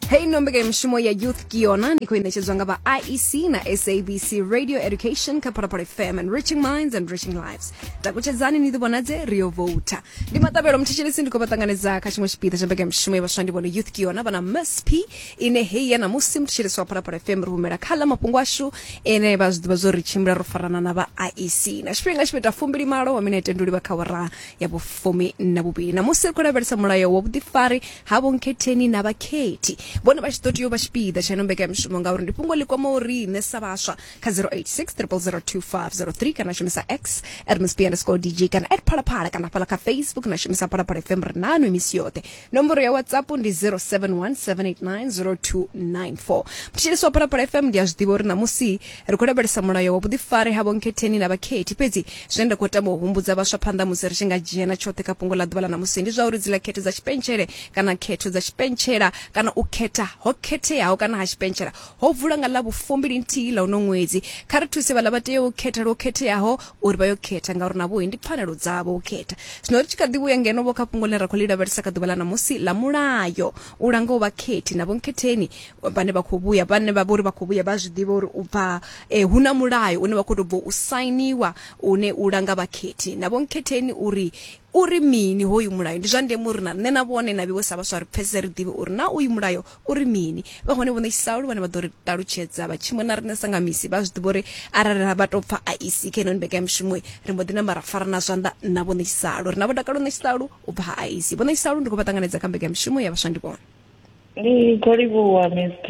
hei no mbekanyamushumo ya youth kiona ndi kuinetshedzwa nga vha iec na sabc radio education kha phalaphala fm and reaching minds and reaching lives takutshedzani ni ḓivhonadze rio vouta ndi matabelo mthetshelesi ndi khou vha ṱanganedza kha tshiṅwe tshipiḓa tsha mbekanyamushumo ya vhaswa ndi vhone youth kiona vhana msp ine hei ya ṋamusi mthetshelesi wa phalaphala fm ri humela kha ḽa mafhungo ashu ene vha zwi ḓivha zwo ri tshimbila ro farana na vha iec na tshifhinga tshipeta fumbili malo wa minete ndi livha kha wara ya vhufumi na vhuvhili na musi ri khou lavhelesa mulayo wa vhuḓifari ha vhonkhetheni na vhakhethi vhone vha tshi ḓo tea u vha tshipiḓa tsha ino mbekanyamishumo ngauri ndi fhungo ḽi kwamaho riṋe sa vhaswa kha 0860002503 kana shumisa x at msp underscore dj kana at phalaphala kana fhala kha facebook na shumisa phalaphala fm ri nanu misi yoṱhe nomboro ya whatsapp ndi 0717890294 mthetshelesi wa phalaphala fm ndi a zwi ḓivha uri ṋamusi ri khou lavhelesa mulayo wa vhuḓifari ha vhonkhetheni na vhakhethi fhedzi zwine nda khou tama u humbudza vhaswa phanḓa musi ri tshi nga dzhia na tshoṱhe kha fhungo ḽa ḓuvha ḽa ṋamusi ndi zwa uri dzila khetho dza tshipentshele kana khetho dza tshipentshela kana u khetha ho khetheaho kana ha tshipentshela ho vula nga ḽa vhufumbili nthihi ḽa uno ṅwedzi kha ri thuse vhaḽa vha teaho u khetha lwo khetheaho uri vha yo khetha ngauri navho ndi pfanelo dzavho u khetha zwino ri tshi kha ḓi vhuya ngeno vho kha fhungo ḽine ra khou ḽi lavhelesa kha ḓuvha ḽa ṋamusi ḽa mulayo u langaho vhakhethi na vhonkhetheni vhane vha khou vhuya vhane vha vhori vha khou vhuya vha zwi ḓivha uri u bva eh, hu na mulayo une wa khou tou bva u sainiwa une u langa vhakhethi na vhonkhetheni uri uri mini hoyu mulayo ndi zwa ndeme uri na nṋe na vhone na vhiwe sa vhaswa ri pfesese ri ḓivhe uri na uyu mulayo Uri mini? Vha hone vho ṋetshisaho luvhone vha ḓo ri ṱalutshedza. Vha tshimu na riṋe sa nga misi vha zwi ḓivha uri arali ra vha tou pfa a i si kha ino mbekanyamushumo ri mbo ḓi namba ra farana zwanḓa na vho ṋetshisaho. Ri na vho dakalo ṋetshisaho u bva ha Aisi. Vho ṋetshisaho ndi khou vha ṱanganedza kha mbekanyamushumo ya vhaswa ndivhona. Ndi khou livhuwa Miss T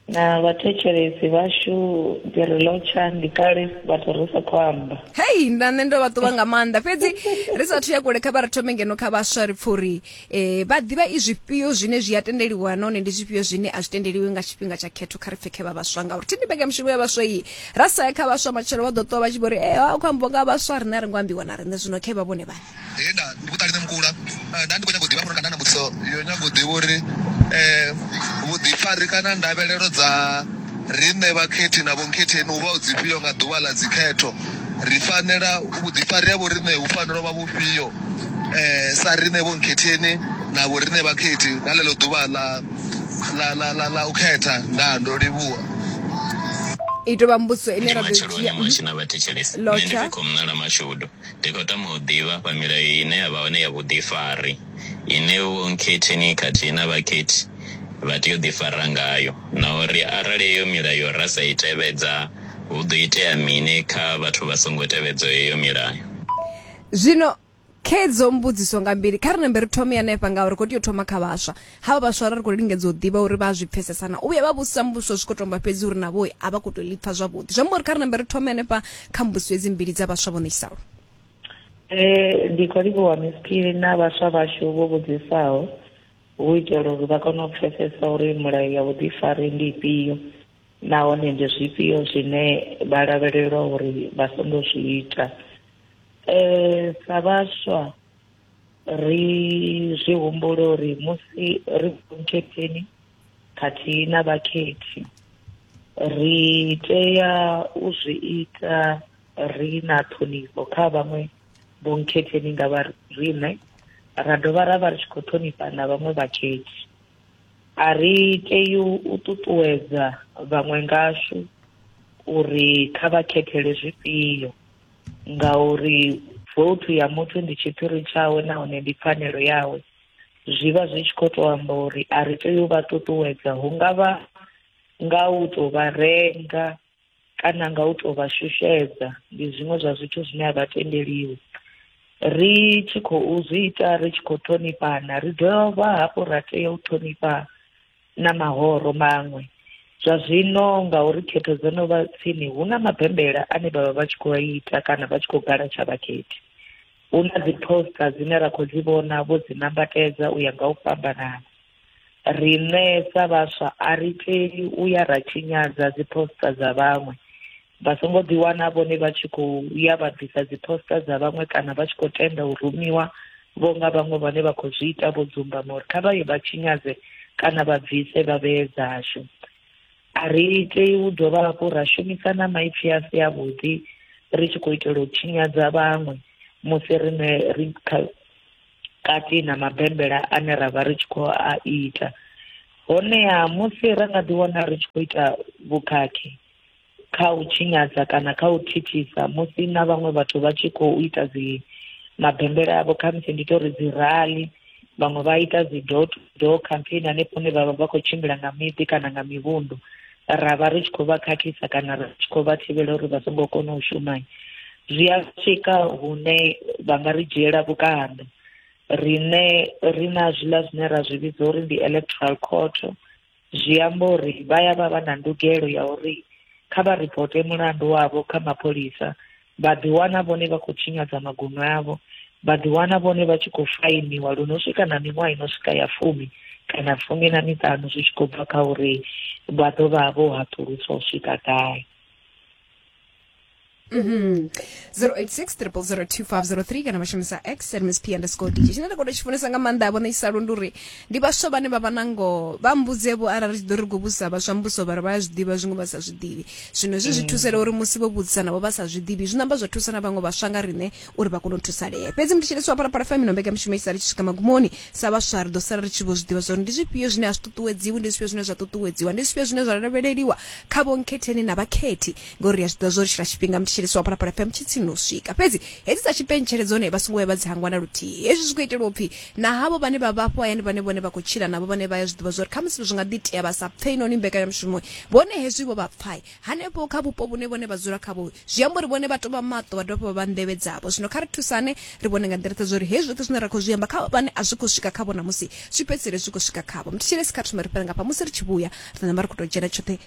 na vhathetshelesi vhashu ndi ri lotsha ndi kale vhathu ri sa khou amba hei nda nṋe ndo vha ṱuvha nga maanḓa fhedzi ri sathu ya kule kha vha ri thome ngeno kha vhaswa ri pfa uri um vha ḓivha i zwifhio zwine zwi a tendeliwa nahone ndi zwifhio zwine a zwi tendeliwi nga tshifhinga tsha khetho kha ri pfhe khe vha vhaswa ngauri thi ndi mbekanyamushumo ya vhaswa iyi ra sa ya kha vhaswa matshelo vha ḓo ṱuwa vha tshi vho ri e eh, a khou ambiwa nga vhaswa riṋe a ri ngo ambiwa na riṋe zwino khe vha vhone vhane He nda ndi vhuṱali nṋe mukula eh, nda ndi khou nyaga u ḓivha hafhanoni kana na mbudziso yo nyaga u ḓivha uri eh, vhuḓifari kana ndavhelelo dza riṋe vhakhethi na vhonkhetheni hu vha hu dzifhio nga ḓuvha ḽa dzikhetho ri fanela vhuḓifari ha vhoriṋe hu fanela u vha vhufhio eh, sa riṋe vhonkhetheni na vhoriṋe vhakhethi nga ḽeḽo ḓuvha ḽa ḽa ḽa ḽa ḽa u khetha ndaa ndo livhuwa i tou vha mbudziso ine Ndi ra ḓo i matshelo dzhia ane mwashi na vhathetshelesi. Nṋe ndi Lotsha. Vhikho Mnala Mashudu. Ndi khou tama u ḓivha afha milayo ine ya vha hone ya vhuḓifari ine Vho Nkhetheni khathihi na Vhakhethi vha tea u ḓifara ngayo na uri arali heyo milayo ra sa i tevhedza hu ḓo itea mini kha vhathu vha songo tevhedzaho heyo milayo. Zwino khedzo mbudziso nga mbili, kha ri nambe ri thome hanefha nga uri ri khou tea u thoma kha vhaswa. Havha vhaswa ra ri khou lingedza u ḓivha uri vha a zwi pfesesa na. U vhuya vha vhudzisa muvhuso zwi khou tomba fhedzi uri navho a vha khou tou ḽi pfa zwavhuḓi. Zwi amba uri kha ri nambe ri thome hanefha kha mbudziso hedzi mbili dza vhaswa vho ṋekisaho. Ee, ndi khou livhuwa Miss Phiri na vhaswa vhashu vho vhudzisaho hu itela uri vha kone u pfesesa uri mulayo ya vhuḓifari ndi ifhio nahone ndi zwifhio zwine vha lavhelelwa uri vha songo zwi ita. Eh, sa vhaswa ri zwi humbula uri musi ri vhunkhetheni khathihi na vhakhethi ri tea u zwi ita ri na ṱhonifho kha vhaṅwe vhunkhetheni nga vha riṋe ra dovha ra vha ri tshi khou ṱhonifha na vhaṅwe vhakhethi a ri tei u ṱuṱuwedza vhaṅwe ngashu uri kha vha khethele zwifhio ngauri voutu ya muthu ndi tshiphiri tshawe nahone ndi pfanelo yawe zwi vha zwi tshi khou tou amba uri a ri tei u vha ṱuṱuwedza hu nga vha nga u tou vha renga kana nga u tou vha shushedza ndi zwiṅwe zwa zwithu zwine a vha tendeliwi ri tshi khou zwi ita ri tshi khou ṱhonifhana ri dovha hafhu ra tea u ṱhonifha na mahoro maṅwe zwa zwino ngauri khetho dzo no vha tsini hu na mabembela ane vhavha vha tshi khou ita kana vha tshi khou gala tsha vhakhethi hu na dzi poster dzine ra khou dzi vhona vho dzi nambatedza u ya nga u fhambanana riṋe sa vhaswa a ri tei u ya ra tshinyadza dzi poster dza vhaṅwe vha songo ḓiwana vhone vha tshi khou ya vha ḓisa dziposta dza vhaṅwe kana vha tshi khou tenda u rumiwa vho nga vhaṅwe vhane vha khou zwi ita vho dzumbama uri kha vha ye vha tshinyadze kana vha bvise vha vhee dzashu a ri tei u dovha hafhu ra shumisa na maipfi a si avhuḓi ri tshi khou itela u tshinyadza vhaṅwe musi riṋe ri kati na mabembela ane ra vha ri tshi khou a ita honeha musi ra nga ḓiwana ri tshi khou ita vhukhakhi kha u tshinyadza kana kha u thithisa musi na vhaṅwe vhathu vha tshi khou ita dzi mabembela avho khamusi ndi tori dzi rali vhaṅwe vha ita dzi door to door campaign hanefho hune vhavha vha khou tshimbila nga miḓi kana nga mivhundu ra vha ri tshi khou vha khakhisa kana ri tshi khou vha thivhela uri vha songo kona u shuma zwi a swika hune vha nga ri dzhiela vhukando rine ri na zwiḽa zwine ra zwi vhidza uri ndi electoral court Zwi amba uri vha ya vha vha na ndugelo ya uri kha vha ripote mulandu wavho kha mapholisa, vha ḓiwana vhone vha khou tshinyadza maguṅwe avho, vha ḓiwana vhone vha tshi khou fainiwa lu no swika na miṅwaha i no swika ya fumi kana fumi na miṱanu zwi tshi khou bva kha uri vha ḓo vha vho haṱuluswa u swika gai. Mhm. 0860002503 kana vha shumisa x at msp underscore dj tshine nda khou tou tshi funesa nga maanḓa vhone isa lundu uri ndi vhaswa vhane vha vha na ngoho vha mbudze vho arali ri tshi ḓo ri khou vhudzisa vhaswa mbuso vhari vha ya zwi ḓivha zwiṅwe vha sa zwi ḓivhi zwino hezwi zwi thusela uri musi vho vhudzisa navho vha sa zwi ḓivhi zwi namba zwa thusa na vhaṅwe vhaswa nga riṋe uri vha kone u thusalea fhedzi ndi tshelesi wa phalaphala fm ino mbekanyamushumo i sali tshi swika magumoni sa vhaswa ri ḓo sala ri tshi vho zwi ḓivha zwa uri ndi zwifhio zwine a zwi ṱuṱuwedziwi ndi zwifhio zwine zwa ṱuṱuwedziwa ndi zwifhio zwine zwa lavheleliwa kha vhonkhetheni na vhakhethi ngori ri a zwiḓivha zwo ri tshila tshifhinga mthetshelesi wa phalaphala fm tshi tsini no swika fhedzi hedzi dza tshipentshele dzone vha songo vhuya vha dzi hangwa na luthihi hezwi zwi khou itelwa upfhi na havho vhane vha vha afho hayani vhane vhone vha khou tshila navho vhane vha ya zwiḓivha zwo ri khamusi zwi nga ḓi tea vha sa pfei noni mbekanyamushumo vhone hezwi vho vha pfai hanefho kha vhupo vhune vhone vha dzula khavho zwi amba uri vhone vha tovha maṱo vha dovha vha nḓevhe dzavho zwino kha ri thusane ri vhone nga nḓila zwa uri hezwi zwoṱhe zwine ra khou zwi amba kha vhane a zwi khou swika khavho namusi zwi fhedzisele zwi khou swika khavho mthetshelesi kha thome ri fhela nga fha musi ri tshi vhuya ri namba ri khou tou dzhena tshoṱhe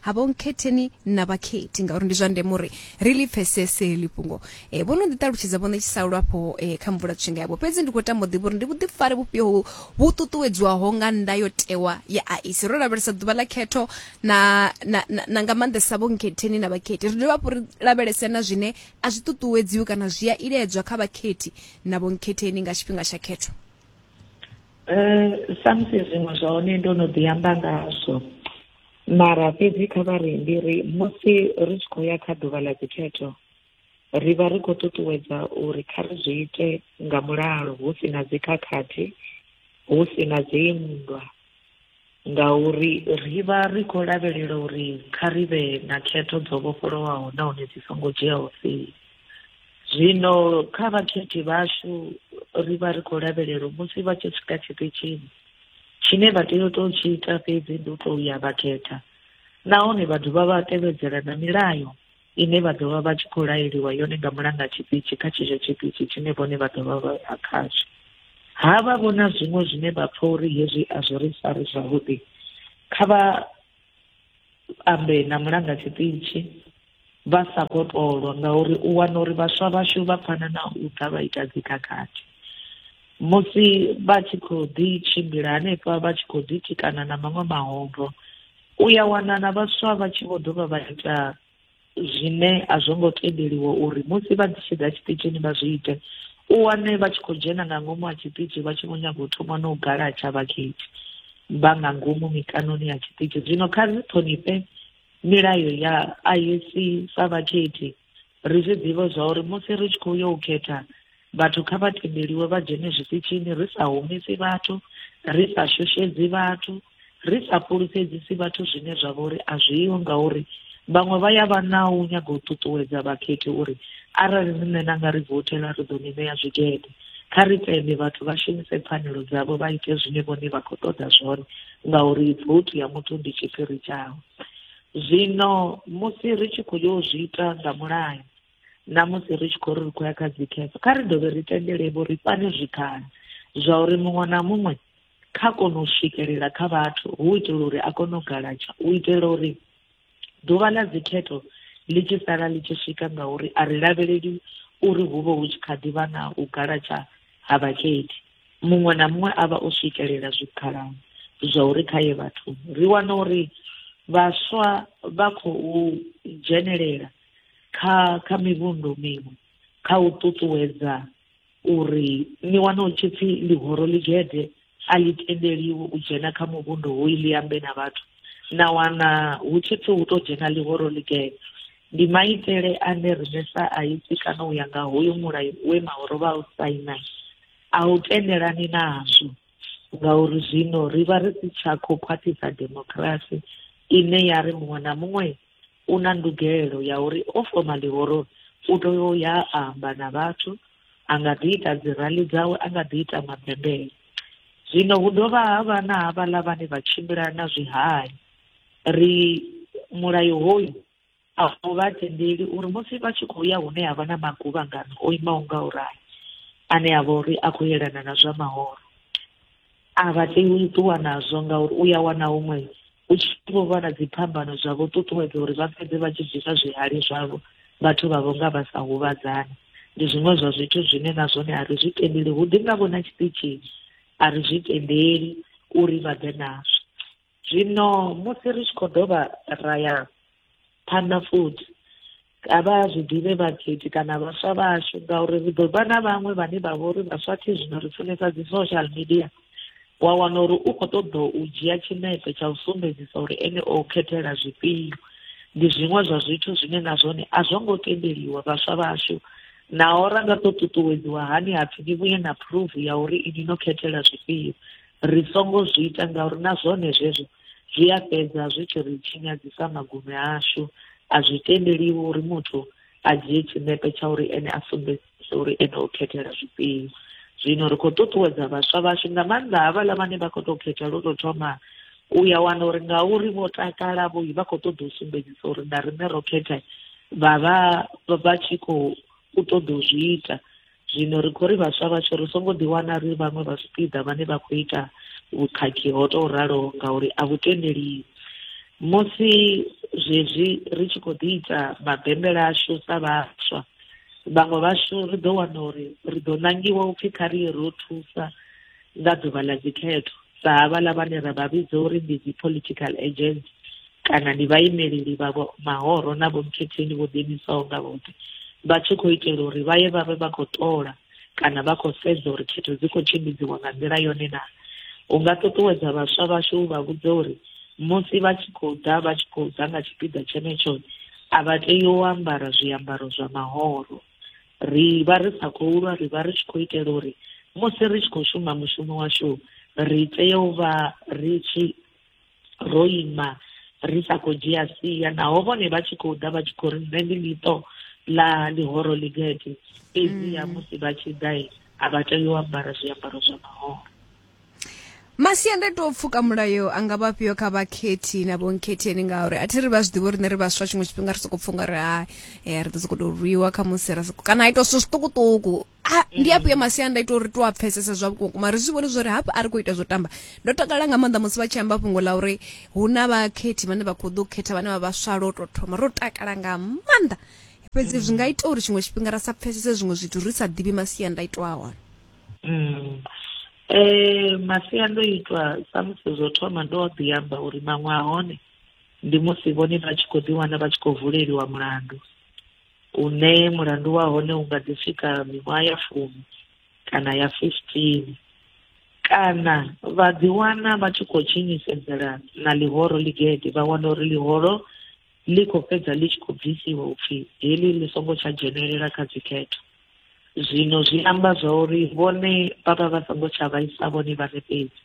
ha vho nkhetheni na vhakhethi ngauri ndi zwa ndeme uri ri ḽi pfesese heḽi fhungo e, vho no ḓi ṱalutshedza vho ṋetshisa lwafho e, kha mvula tshinga yavho fhedzi ndi khou tama u ḓivha uri ndi vhuḓifari vhufhio hu- vhu ṱuṱuwedzwaho nga ndayotewa ya aisi ro lavhelesa ḓuvha ḽa khetho na, na, na, na nga maanḓesa vho nkhetheni na vhakhethi ri dovha hafhu ri lavhelese na zwine a zwi ṱuṱuwedziwi kana zwi a iledzwa kha vhakhethi na vho nkhetheni nga tshifhinga tsha khetho Eh, samusi zwiṅwe zwa hone ndo no ḓi amba ngazwo mara fhedzi kha vha ri ndi ri musi ri tshi khou ya kha ḓuvha ḽa dzikhetho ri vha ri khou ṱuṱuwedza uri kha ri zwi ite nga mulalo hu si na dzikhakhathi hu si na dzinndwa ngauri ri vha ri khou lavhelela uri kha ri vhe na khetho dzo vhofholowaho nahone dzi songo dzhiaho sia zwino kha vhakhethi vhashu ri vha ri khou lavhelela musi vha tshi swika tshiṱitshini Tshine vha tea u tou tshi ita fhedzi ndi u tou ya vha khetha nahone vha dovha vha tevhedzela na milayo ine vha ḓo vha vha tshi khou laeliwa yone nga mulanga tshiṱitshi kha tshetsho tshiṱitshi tshine vhone vha ḓo vha vha ya khazwo. Ha vha vhona zwiṅwe zwine vha pfa uri hezwi a zwi ri fari zwavhuḓi kha vha ambe na mulanga tshiṱitshi vha sa khou tolwa ngauri u wana uri vhaswa vhashu vha pfana na u ḓa vha ita dzikhakhathi musi vha tshi khou ḓi tshimbila hanefha vha tshi khou ḓi tikana na maṅwe mahombo u ya wana na vhaswa vha tshi vho dovha vha ita zwine a zwo ngo tendeliwa uri musi vha tshi ḓa tshiṱitshini vha zwi ite u wane vha tshi khou dzhena nga ngomu ha tshiṱitshi vha tshi vho nyaga u thoma na u galatsha vhakhethi vha nga ngomu mikanoni ya tshiṱitshi zwino kha ri ṱhonifhe milayo ya IEC sa vhakhethi ri zwi ḓivhe zwa uri musi ri tshi khou yo u khetha Vhathu kha vha tendeliwe vha dzhene zwiṱitshini ri sa humisi vhathu, ri sa shushedzi vhathu, ri sa fhulufhedzisi vhathu zwine zwa vha uri a zwiho ngauri vhaṅwe vha ya vha na u nyaga u ṱuṱuwedza vhakhethi uri arali nṋe na nga ri vothela ri ḓo ni ṋea zwigede. Kha ri tende vhathu vha shumise pfanelo dzavho vha ite zwine vhone vha khou ṱoḓa zwone ngauri vothi ya muthu ndi tshiphiri tshawe. Zwino musi ri tshi khou yo zwi ita nga mulayo, na musi ri tshi khou ri ri khou ya kha dzi cancer kha ri dovhe ri tendele vho ri fhane zwikhala zwa uri muṅwe na muṅwe kha kone u swikelela kha vhathu hu itela uri a kone u galatsha u itela uri ḓuvha ḽa dzikhetho ḽi tshi sala ḽi tshi swika ngauri a ri lavheleli uri hu vhe hu tshi kha ḓivha na u galatsha ha vhakhethi muṅwe na muṅwe a vha o swikelela zwikhalani zwa uri kha ye vhathuni ri wana uri vhaswa vha khou dzhenelela kha kha mivhundu miṅwe kha u ṱuṱuwedza uri ni wana u tshi pfi ḽihoro ḽigede a ḽi tendeliwi u dzhena kha muvhundu hoyu ḽi ambe na vhathu na wana hu tshi pfi hu to dzhena ḽihoro ḽigede ndi maitele ane riṋe sa aisi kana u ya nga hoyu mulayo we mahoro vha u saina a u tendelani nazwo ngauri zwino ri vha ri si tsha khou khwaṱhisa demokirasi ine ya ri muṅwe na muṅwe u na ndugelo ya uri o foma ḽihoro u tea u ya a amba na vhathu a nga ḓi ita dzi rali dzawe a nga ḓi ita mabembele zwino hu dovha ha vha na havhaḽa vhane vha tshimbila na zwihali ri mulayo hoyu a u vha tendeli uri musi vha tshi khou ya hune ha vha na maguvhangano o imaho nga u rali ane a vha uri a khou yelana na zwa mahoro A vha tei u ṱuwa nazwo ngauri u ya wana huṅwe hu tshi vho vha na dziphambano zwa vho ṱuṱuwedza uri vha fhedze vha tshi bvisa zwihali zwavho vhathu vha vho nga vha sa huvhadzani. Ndi zwiṅwe zwa zwithu zwine na zwone a ri zwi tendeli, hu ḓi nga vho na tshiṱitshini a ri zwi tendeli uri vha ḓe nazwo. zwino musi ri tshi khou dovha ra ya phanḓa futhi a vha zwi ḓivhe vhakhethi kana vhaswa vhashu ngauri ri ḓo vha na vhaṅwe vhane vha vha uri vhaswa thi zwino ri funesa dzi social media wa wana uri u khou ṱoḓa u dzhia tshinepe tsha u sumbedzisa uri ene o khethela zwifhio ndi zwiṅwe zwa zwithu zwine na zwone a zwo ngo tendeliwa vhaswa vhashu naho ra nga ḓo ṱuṱuwedziwa hani hapfi ni vhuye na phuruvu ya uri ini no khethela zwifhio Ri songo zwi ita ngauri na zwone zwezwo zwi a fhedza zwi tshi ri tshinyadzisa magume ashu a zwi tendeliwi uri muthu a dzhie tshinepe tsha uri ene a sumbedzise uri ene o khethela zwifhio zwino ri khou ṱuṱuwedza vhaswa vhashu nga maanḓa havhaḽa vhane vha khou tou khetha lwo tou thoma u ya wana uri nga uri vho takala vho vha khou ṱoḓa u sumbedzisa uri na riṋe ro khetha vha vha vha tshi khou ṱoḓa u zwi ita zwino ri khou ri vhaswa vhatsho ri songo ḓiwana ri vhaṅwe vha zwipiḓa vhane vha khou ita vhukhakhi ho tou raloho ngauri a vhu tendeliwi musi zwezwi ri tshi khou ḓi ita mabembela ashu sa vhaswa vhaṅwe vhashu ri ḓo wana uri ri ḓo nangiwa upfhi kha ri ye ro thusa nga ḓuvha ḽa dzikhetho sa havhala vhane ra vha vhidza uri ndi dzi political agents kana ndi vhaimeleli vha mahoro na vhomkhetheni vho ḓiimisaho nga vhoṱhe vha tshi khou itela uri vha ye vha vhe vha khou ṱola kana vha khou sedza uri khetho dzi khou tshimbidziwa nga nḓila yone na u nga ṱuṱuwedza vhaswa vhashu u vha vhudze uri musi vha tshi khou ḓa vha tshi khou ḓa nga tshipiḓa tshenetsho a vha tei u ambara zwiambaro zwa mahoro ri vha ri sa khou lwa ri vha ri tshi khou itela uri musi ri tshi khou shuma mushumo washu ri tea u vha ri tshi ro ima ri sa khou dzhia sia naho vhone vha tshi khou ḓa vha tshi khou ri nṋe ndi ḽiṱo ḽa ḽihoro ligede fhedziha mm. musi vha tshi ḓa a vha tei u ambara zwiambaro zwa mahoro masiandaitwa o pfuka mulayo a nga vha fhio kha vhakhethi na vhonkhetheni ngauri a thi ri vha zwi ḓivha uri nṋe ri vhaswa tshiṅwe tshifhinga ri sokou pfha unga ri hai eh, ri ḓo sokou tou rwiwa kha musi ra sokou kana a ita zwithu zwiṱukuṱuku Ah, ndi afhio masiandaitwa uri to a pfesesa zwa vhukuma ri zwi vhone zwa uri hafha a ri khou ita zwo tamba ndo takala nga maanḓa musi vha tshi amba fhungo ḽa uri hu na vhakhethi vhane vha khou ḓo khetha vhane vha vhaswa lwo tou thoma ro takala nga maanḓa fhedzi zwi nga ita uri tshiṅwe tshifhinga ra sa pfesese zwiṅwe zwithu ri sa ḓivhi masiandaitwa a hone Mm. Eh masiandoitwa samusi zwo thoma ndo ḓi amba uri maṅwe a hone ndi musi vhone vha tshi khou ḓiwana vha tshi khou vuleliwa mulandu une mulandu wa hone u nga ḓi swika miṅwaha ya fumi kana ya fifteen kana vha ḓiwana vha tshi khou tshinyisedzelana na ḽihoro ḽigede vha wana uri ḽihoro ḽi khou fhedza ḽi tshi khou bvisiwa u pfi heḽi ḽi songo tsha dzhenelela kha dzikhetho. Zwino zwi amba zwa uri vhone vha vha vha songo tsha vhaisa vhone vhaṋe fhedzi,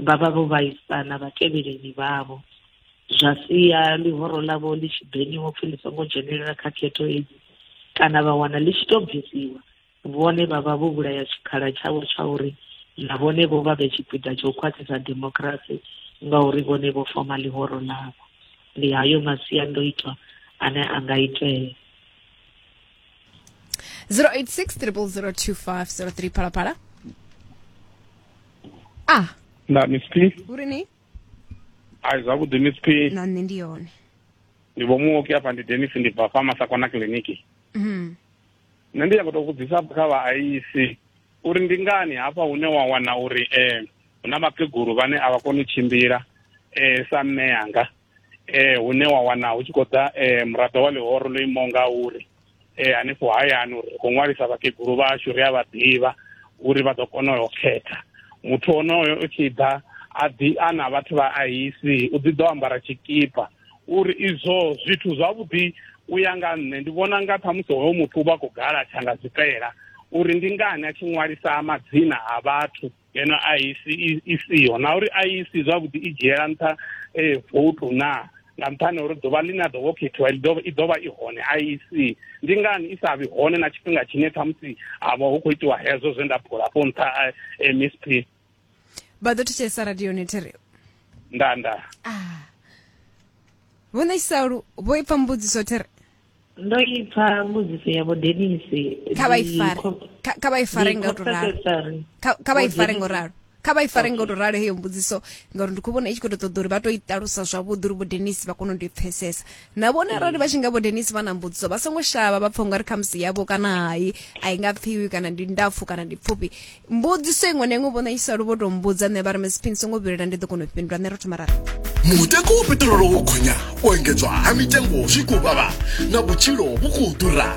vha vha vho vhaisa na vhatevheleni vhavho, zwa sia ḽihoro ḽavho ḽi tshi beniwa u pfi ḽi songo dzhenelela kha khetho hedzi kana vha wana ḽi tshi tou bvisiwa Vhone vha vha vho vhulaya tshikhala tshavho tsha uri na vhone vho vha vhe tshipiḓa tsha u khwaṱhisa demokirasi ngauri vhone vho foma ḽihoro ḽavho. Ndi hayo masiandoitwa ane a nga itea. 086 0002503 phalaphala a ah. na miss p uri ni ai zwavhuḓi miss p na nṋe ndi yone ndi vho muoki afha ndi denis ndi bva fa masakona kiliniki mm. nṋe ndi nyako to vhudzisa kha vhaaisi uri ndi ngani hafha hune wa wana uri um hu na vhakegulu vhane a vha koni u tshimbila um sa mme yanga um hune wa wana hu tshi khou ḓa um muraḓo wa ḽihoro ḽo imaho nga uri um hanefho hayani uri ri khou ṅwalisa vhakegulu vhashu ri a vha ḓivha uri vha ḓo kona u khetha muthu onoyo u tshi ḓa a ḓi a na vhathu vha aisi u ḓi ḓo ambara tshikipa uri izwo zwithu zwavhuḓi u ya nga nṋe ndi vhona nga ṱhamusi hoyo muthu u vha khou gala tshanga zwifhela uri ndi ngani a tshi ṅwalisa madzina a vhathu ngeno a isi i siho na uri a isi zwavhuḓi i dzhiela nṱha eh, voutu naa nga nṱhani uri ḓuvha ḽine a ḓovha o khethiwa i ḓovha i hone a isi ndi ngani i sa vhi hone na tshifhinga tshine ṱhamusi ha vha hu khou itiwa hezwo zwe nda phula fho nṱha eh, msp vha ḓo thetshelesa radioni thi ri nda nda ah. vho ṋekisa lu vho ipfa mbudziso thi ri ndo ipfa mbudziso ya vho denisi kha vha ifare kha vha ifare nga u to ralo kha vha ifare nga u ralo kha vha ifare nga u to ralo heyo mbudziso ngauri ndi khou vhona i tshi khou to ṱoḓa uri vha to i ṱalusa zwavhuḓi uri vho denisi vha kone u ndi pfesesa na vhone arali vha tshi nga vho denisi vha na mbudziso vha songo shavha vha pfha ungari khamusi yavho kana hayi a i nga pfiwi kana ndi ndapfu kana ndi pfufhi mbudziso iṅwe na iṅwe vhona i salo vho tou mbudza nṋe vha ri misi phini songo vhilela ndi ḓo kona u fhindula nṋe ro thoma rara mutengo wa peṱirolo wo gonya u engedzwa ha mitengo zwi khou vhavha na vhutshilo vhu khou ḓura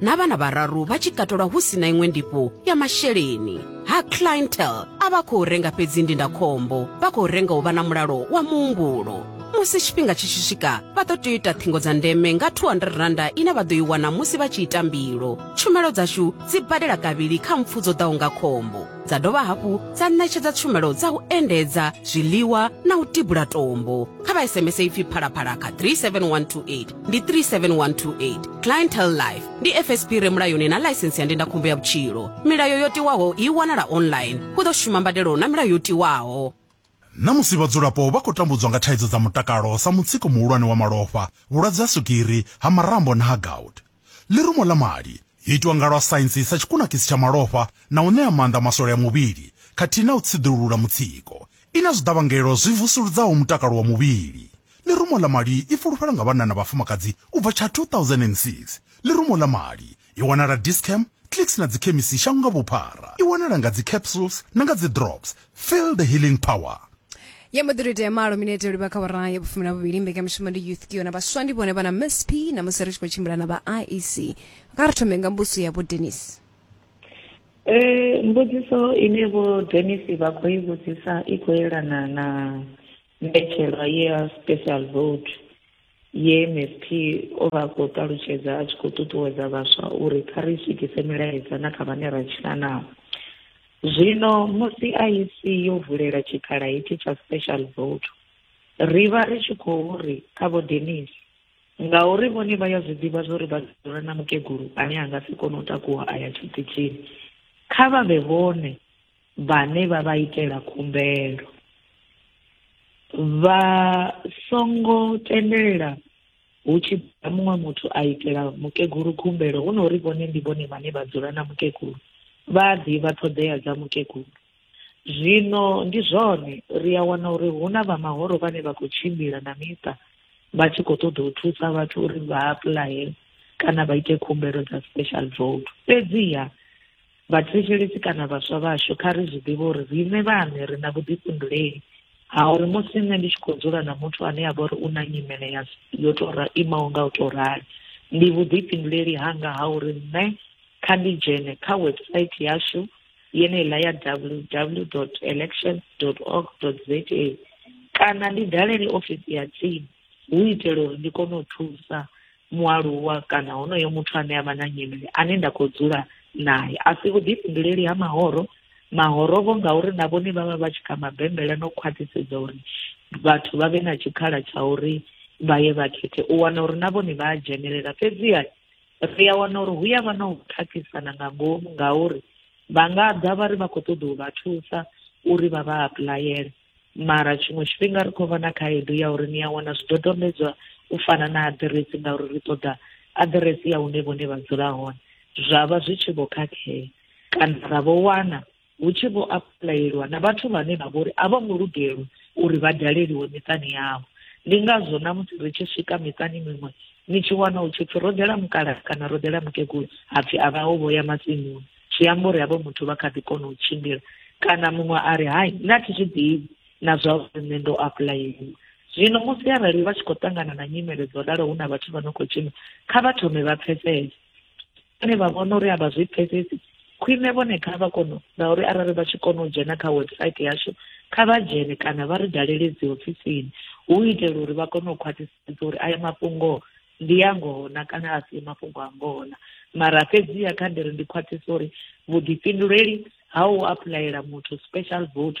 na vhana vhararu vha tshi katelwa hu si na iṅwe ndifho ya masheleni ha clientel a vha khou renga fhedzi ndindakhombo vha khou renga u vha na mulalo wa muhumbulo musi tshifhinga tshi tshi swika vha ḓo tea u ita ṱhingo dza ndeme nga 200 randa ine vha ḓo i wana musi vha tshi ita mbilo tshumelo dzashu dzi badela kavhili kha mpfu dzo ḓaho nga khombo dza dovha hafhu dza ṋetshedza tshumelo dza u endedza zwiḽiwa na u tibula tombo kha vha sms ipfi phalaphala kha 37128 ndi 37128 clientele life ndi fsp re mulayoni na ḽaisensi ya ndindakhombo ya vhutshilo milayo yo tiwaho i wanala online hu ḓo shuma mbadelo na milayo yo tiwaho Ṋamusi vhadzulapo vha khou tambudzwa nga thaidzo dza mutakalo sa mutsiko muhulwane wa malofha, vhulwadze ha swigiri, ha marambo na ha gout. Ḽirumo ḽa mali, yo itwa nga lwa saintsi sa tshikunakisi tsha malofha na u ṋea maanḓa maswole a muvhili khathihi na u tsiḓulula mutsiko, I na zwiḓavhangelo zwi vusuludzaho mutakalo wa muvhili. Ḽirumo ḽa mali i fulufhela nga vhanna na vhafumakadzi u bva tsha 2006. Ḽirumo ḽa mali i wanala Dis-Chem, Clicks na dzikhemisi shango nga vhuphara. I wanala nga dzi capsules na nga dzi drops. Feel the healing power. Ya mbo ḓi tou itea malo minete livha kha awara ya vhufumi na vhuvhili mbekanyamushumo ndi youth kio na vhaswa ndi vhone vha na msp namusi ri tshi khou tshimbila na vha iec kha ri thome nga mbuso ya vho denis Eh, mbudziso ine vho Dennis vha khou i vhudzisa i khou yelana na mbetshelwa ye ya special vote ye msp o vha a khou ṱalutshedza a tshi khou ṱuṱuwedza vhaswa uri kha ri swikise milaedza na kha vhane ra tshila nao zwino musi iec yo vulela tshikhala hetshi tsha special vote ri vha ri tshi khou ri kha vho Dennis ngauri vhone vha ya zwi ḓivha zwo ri vha dzula na mukegulu ane a nga si kone u takuwa a ya tshiṱitshini kha vha vhe vhone vhane vha vha itela khumbelo vha songo tendelela hu tshi ḓa muṅwe muthu a itela mukegulu khumbelo hu na uri vhone ndi vhone vhane vha dzula na mukegulu vha a ḓivha ṱhoḓea dza mukegulu Zwino ndi zwone, ri a wana uri hu na vha mahoro vhane vha khou tshimbila na miṱa vha tshi khou ṱoḓa u thusa vhathu uri vha apuḽaye kana vha ite khumbelo dza special vote. Fhedziha vhathetshelesi kana vhaswa vhashu kha ri zwi ḓivhe uri riṋe vhaṋe ri na vhuḓifhinduleli ha uri musi nṋe ndi tshi khou dzula na muthu ane a vha uri u na nyimele ya yo tou imaho nga u tou rali ndi vhuḓifhinduleli hanga ha uri nṋe kha ndi dzhene kha website yashu yeneiḽa ya www elections org za kana ndi dalele ofisi ya tsini hu itela uri ndi kone u thusa mualuwa kana honoyo muthu ane a vha na nyimele ane nda khou dzula naye a si vhuḓifhinduleli ha mahoro mahorovo ngauri na vhone vha vha vha tshi kha mabembela no khwaṱhisedza uri vhathu vha vhe na tshikhala tsha uri vha ye vha khethe u wana uri na vhone vha a dzhenelela fhedziha ri a wana uri hu ya vha na u khakhisana nga ngomu ngauri vha nga ḓa vha ri vha khou ṱoḓa u vha thusa uri vha vha apulayele mara tshiṅwe tshifhinga ri khou vha na khaedu ya uri ni a wana zwidodombedzwa u fana na aḓiresi ngauri ri ṱoḓa aḓiresi ya hune vhone vha dzula hone zwa vha zwi tshi vho khakhea kana ra vho wana hu tshi vho apuḽayeliwa na vhathu vhane vha vhori a vho ngo lugelwa uri vha daleliwe miṱani yavho ndi ngazwo na musi ri tshi swika miṱani miṅwe ni tshi wana hu tshipfi ro ḓela mukala kana ro ḓela mukegulu hapfi a vha o vho ya matsimuni zwi amba uri havho muthu vha kha ḓi kona u tshimbila kana muṅwe a ri hai nṋe a thi zwi ḓivhi na zwa uri nṋe ndo apuḽayeliwa zwino musi arali vha tshi khou ṱangana na nyimele dzo ralo hu na vhathu vha no khou tshina kha vha thome vha pfesese vhane vha vhona uri a vha zwi pfesesi khwine vhone kha vha kono ngauri arali vha tshi kona u dzhena kha website yashu kha vha dzhene kana vha ri dalele dzi ofisini hu itela uri vha kone u khwaṱhisedza uri aya mafhungo ndi ya ngona kana a si mafhungo a ngona mara fhedziha kha ndi ri ndi khwaṱhisa uri vhuḓifhinduleli ha u apuḽayela muthu special vote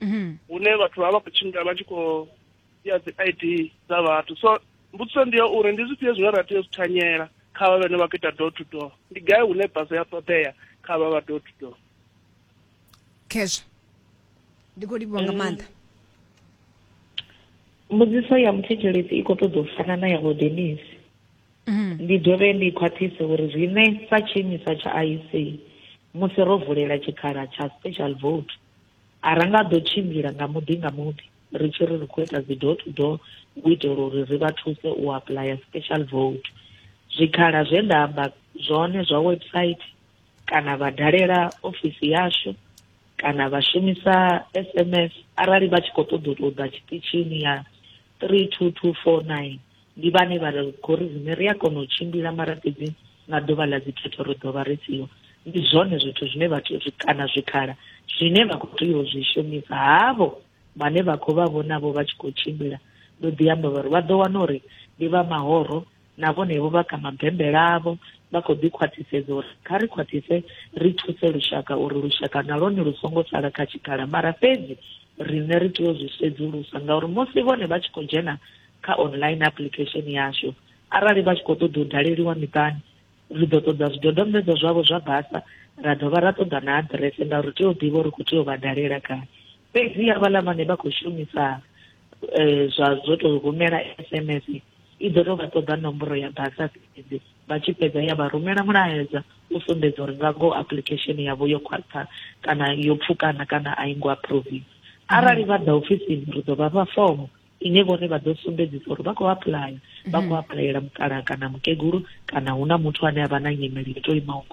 mhm. hune vhathu vha vha khou tshimbila vha tshi khou ya dzi i d dza vhathu so mbudziso ndi ya uri ndi zwifhio zwine ra tea u zwi thanyela kha vha vhene vha khou ita door to door ndi gai hune basa ya ṱoḓea kha vha vha door to door khezwo ndi khou livhiwa nga maanḓa mbudziso ya muthetshelesi i khou ṱoḓa u fana na ya odenis mhm. ndi dovhe ndi khwaṱhise uri zwine sa tshiimiswa tsha iec musi ro vulela tshikhala tsha special vote A ra nga ḓo tshimbila nga muḓi nga muḓi ri tshi ri ri khou ita dzi door to door u itela uri ri vha thuse u apuḽaya special vote. Zwikhala zwe nda amba zwone zwa website kana vha dalela ofisi yashu kana vha shumisa SMS arali vha tshi khou ṱoḓa u tou ḓa tshiṱitshini ya 32249. ndi vhane vha ri khori riṋe ri a kona u tshimbila mara fhedzi nga ḓuvha ḽa dzikhetho ri ḓo vha ri siho ndi zwone zwithu zwine vhathu kana zwikhala zwine vha khou tea u zwi shumisa havho vhane vha khou vha vhonavho vha tshi khou tshimbila ndo ḓi amba vhari vha ḓo wana uri ndi vha mahoro na vhonevho vha kha mabembela avho vha khou ḓi khwaṱhisedza uri kha ri khwaṱhise ri thuse lushaka uri lushaka na lwone lu songo sala kha tshikhala mara fhedzi riṋe ri tea u zwi sedzulusa ngauri musi vhone vha tshi khou dzhena kha online application yashu arali vha tshi khou ṱoḓa u daleliwa miṱani ri ḓo ṱoḓa zwidodombedzwa zwavho zwa basa ra dovha ra ṱoḓa na aḓirese ngauri tea u ḓivha uri khou tea u vha dalela gai fhedzi havhaḽa vhane vha khou shumisa um zwa zwo tou rumela s m s i ḓo tou vha ṱoḓa nomboro ya basa fhedzi vha tshi fhedza ya vha rumela mulaedza u sumbedza uri nga ngoho application yavho yo khwaṱha kana yo pfukana kana a i ngo approviwa arali vha ḓa ofisini ri ḓo vha fha fomo ine vhone vha ḓo sumbedzisa uri vha khou apuḽaya vha khou mhm. apuḽayela mukalaha kana mukegulu kana hu na muthu ane a vha na nyimele i to imaho ngo